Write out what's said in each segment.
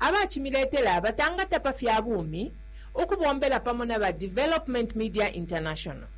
aba cimiletela batangata pa fya bumi ukubombela pamo na ba Development Media International.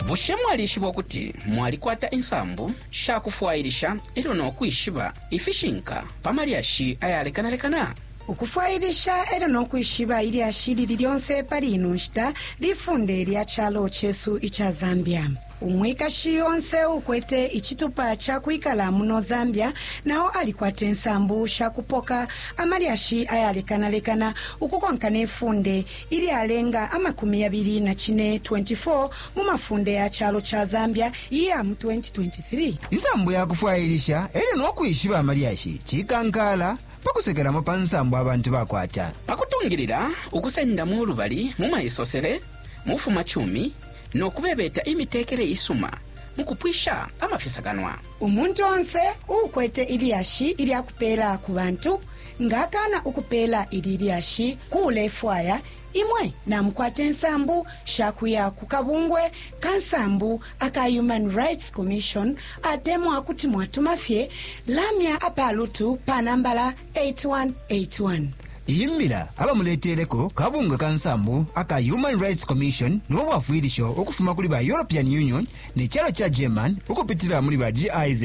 Bushe mwalishiba ukuti mwalikwata insambu sha kufwailisha e lyo no kwishiba ifishinka pa malyashi ayalekanalekana? ukufwailisha e lyo no kwishiba ilyashi lili lyonse pali ino nshita lifunde lya calo cesu ica zambia Umwikashi onse uukwete icitupa ca kwikala muno Zambia na o alikwate nsambu sha kupoka amalyashi ayalekanalekana ukukonka ne funde ilyalenga amakumi yabili na cine, 24 mu mafunde ya calo ca Zambia iya mu 2023. Insambu ya kufwailisha e lyo no kwishiba amalyashi cikankaala pa kusekelamo pa nsambu abantu bakwata. Pa kutungilila ukusendamo ulubali mu maisosele, mu bufumacumi, no kubebeta imitekele isuma mu kupwisha amafisakanwa. Umuntu onse uukwete ilyashi ilya kupeela ku bantu nga akaana ukupeela ili lyashi ku ulefwaya, imwe namukwate nsambu sha kuya ku kabungwe ka nsambu aka Human Rights Commission atemwa kuti mwatuma fye lamya apalutu pa nambala 8181. Iyi mbila abamuleteleko kabungwe ka nsambu aka Human Rights Commission no bwafwilisho ukufuma kuli ba European Union ne calo ca German ukupitila muli ba GIZ.